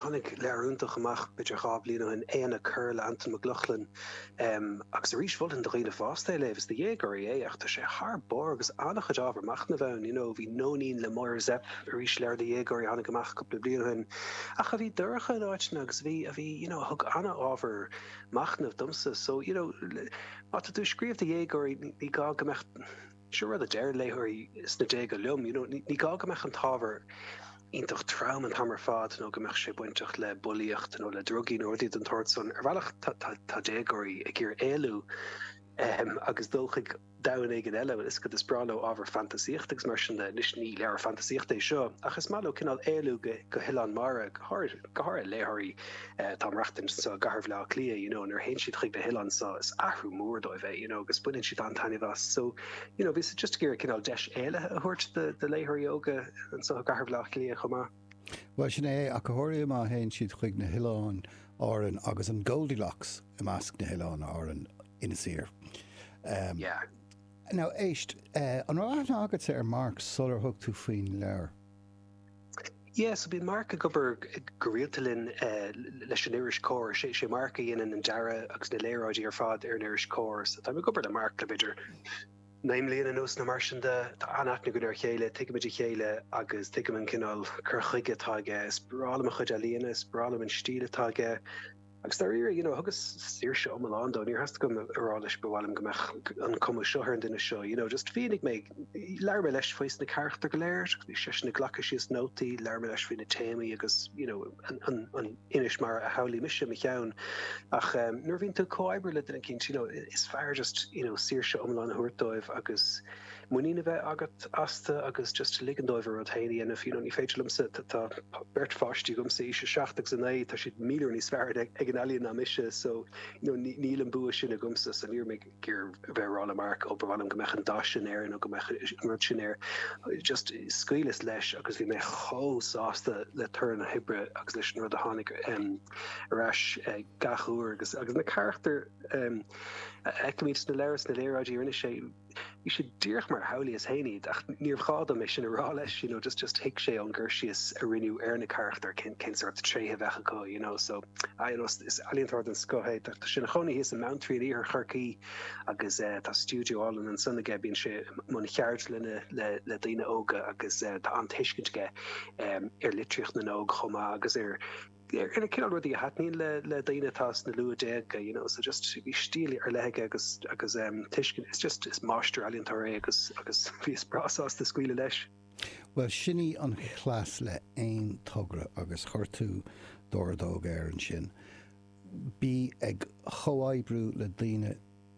Tháinig leabhar iontach amach b'fhéidir dhá bhliain ó shin, Éanna Corr le hAntain Mac Lochlainn agus arís mholfainn do dhaoine fásta é a léamh, is do dhéagóirí é ach tá sé thar barr agus an-chuid ábhar machnaimh ann, you know. Bhí Nóinín le Máire Zepf, arís leabhar do dhéagóirí a tháinig amach cúpla bliain ó shin ach a bhí dorcha in áiteanna agus a bhí, a bhí, you know, a thug an-ábhar machnaimh domsa. So, you know, má tá tú ag scríobh do dhéagóirí ní gá go mbeadh. Seo rud a deireann léitheoirí sna déaga liom, you know, ní gá go mbeadh an t-ábhar iontach trom an t-am ar fad nó go mbeadh sé bainteach le bullaíocht nó le drugaí nó rudaí den tsórt san. Ar bhealach tá déagóirí ag iarraidh éalú um, agus dul chuig domhan éigin eile mar is cad is breá leo ábhar fantasaíochta agus mar sin de. Anois ní leabhar fantasaíochta é seo ach is maith leo cineál éalú go go hoileán mara go háirithe léitheoirí Tá ag maireachtaint anseo i gcathair Bhleá Cliath you know nuair a théann siad chuig na hoileáin seo is athrú mór dóibh é you know agus baineann siad an-taitneamh as so you know bhíos-sa just ag iarraidh cineál deis éalaithe a thabhairt do do léitheoirí óga anseo i gcathair Bhleá Cliath chomh maith. Bhuel sin é ach go háirithe má théann siad chuig na hoileáin Árann agus an Goldilocks i measc na hoileáin Árann Inis Oírr. Um, yeah. Now éist, uh, an raibh aithne agatsa ar Mark sular thug tú faoin leabhar? Yes, so bíonn Mark ag obair go rialta linn leis an iris Comhar. Is é Mark a dhéanann an dearadh agus na léaráidí ar fad ar an iris Comhar. So táim ag obair le Mark le b'fhéidir naoi mbliana anuas nó mar sin de. Tá an-aithne againn ar a chéile, tuigimid a chéile agus tuigim an cineál cur chuige atá aige. Is breá liom a chuid ealaíona, is breá liom an stíl atá aige. Agus dáiríre, you know, thugas saoirse iomlán dó, níor theastaigh uaim a rá leis ba mhaith liom go mbeadh an cuma seo ar an duine seo, you know, just mhínigh mé, labhair mé leis faoi na carachtair go léir, bhí seisean ag glacadh síos nótaí, labhair mé leis faoi na téamaí agus, you know, an inis mar a shamhlaigh mise i mo cheann. Ach um, nuair a bhíonn tú ag comhoibriú le duine eicínt, you know, is fearr just, you know, saoirse iomlán a thabhairt dóibh agus muinín a bheith agat astu agus just ligean dóibh a rud féin a dhéanamh. You know, ní féidir liomsa, tá, tá beirt pháistí agamsa, aois a seacht agus a naoi, tá siad míle uair níos fearr ag, ag an ealaín ná mise, so, you know, ní, níl an bua sin agamsa, so ní raibh mé ag iarraidh a bheith ag rá le Mark, ó, ba mhaith liom go mbeadh an dath sin air nó go mbeadh an rud sin air. Just scaoileas leis agus bhí mé chomh sásta le toradh na hoibre agus leis an rud a tháinig, em, ar ais gach uair agus, agus na carachtair, em, a fheicimid sa leabhar, sna léaráidí a rinne sé, Bhí siad díreach mar a shamhlaíos féin iad, ach níorbh ghá dom é sin a rá leis, you know, just, just thuig sé ón gcur síos a rinneadh ar na carachtair cén, cén sórt tréithe a bheadh acu, you know, so, ah, you know, is ealaíontóir den scoth é, tá sé ina chónaí thíos i mBeanntraí in iarthar Chorcaí agus eh, tá stiúideo álainn ansan aige, bíonn sé i mbun ceardlanna le, le daoine óga agus eh, tá an-tuiscint aige ar litríocht na n-óg chomh maith agus ar ar na cineál rudaí a thaitníonn le le daoine atá sna luathdhéaga you know so just bhí stíl ar leith aige agus agus em tuiscint it's just is máistir ealaíontóir é agus agus bhíos breá sásta scaoileadh leis. Bhuel sin é an cleas le aon togra agus chuir tú d'ordóg air ansin. Bí ag chomhoibriú le daoine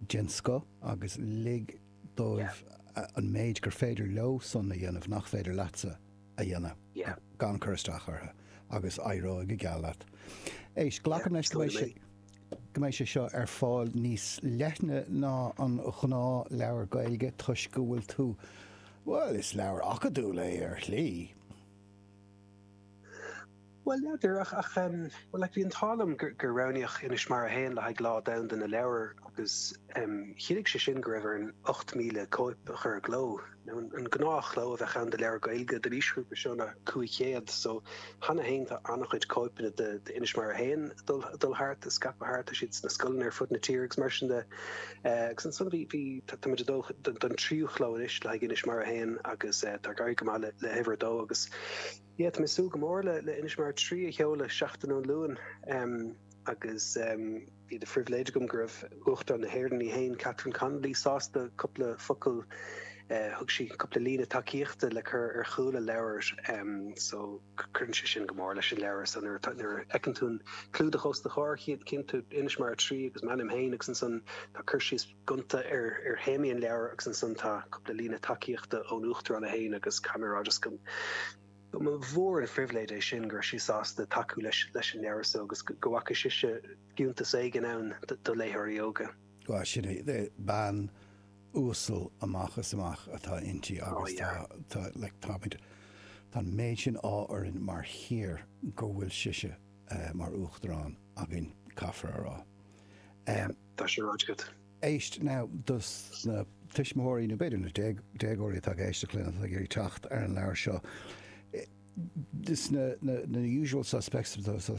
den scoth agus lig dóibh an méid gur féidir leosan a dhéanamh nach féidir leatsa. a dhéanamh gan cur isteach orthu agus éireoidh go geal leat. Éist, glacaim leis go mbeidh sé seo ar fáil níos leithne ná an ghnáthleabhar Gaeilge toisc go bhfuil tú, bhuel, is leabhar acadúil é ar shlí. Bhuel, n'fheadar, ach bhuel, like, bhí an t-ádh liom gur roghnaíodh Inis Mara a hAon le haghaidh Lá Domhanda na Leabhar agus chinntigh sé sin go raibh orainn 8,000 cóip a chur i gcló. Now, an gnáthchló a bheadh ann do leabhar Gaeilge don aoisghrúpa seo ná 500, so cheana féin tá an-chuid cóipeanna d'Inis Mara a hAon ag dul thart, ag scaipeadh thart, tá siad sna scoileanna ar fud na tíre agus mar sin de. Agus ansan bhí, bhí, tá muid ag dul don tríú chló anois le haghaidh Inis Mara a hAon agus tá ag éirí go maith le huimhir a dó agus, Yeah, tá mé ag súil go mór le le Inis Mara 3 a sheoladh seachtain ón Luain um agus um bhí de phribhléid agam go raibh Uachtarán na hÉireann í féin Catherine Connolly sásta cúpla focal uh, thug sí cúpla líne tacaíochta le cur ar chúl an leabhair um, so cuireann sé sin go mór leis an leabhar san nuair nuair fheiceann tú an clúdach os do chomhair chíonn tú Inis Mara 3 agus m'ainm féin agus ansan tá cur síos gonta ar théamaí an leabhair agus ansan tá cúpla líne tacaíochta ón Uachtarán í féin agus Cameradis. Ba mhór an phribhléid é sin go raibh sí sásta tacú leis an leabhar so agus go bhfaca sise fiúntas éigin ann do léitheoirí óga. Bhuel, sin é. Bean uasal amach is amach atá inti agus tá, like, táimid, tá an méid sin ádh orainn mar thír go bhfuil sise mar Uachtarán againn, caithfear a rá. Tá sé ráite agat. Éist now, dos na tuismitheoirí, nó b'fhéidir na déagóirí atá ag éisteacht linn, atá ag iarraidh teacht ar an leabhar seo, sna usual suspects,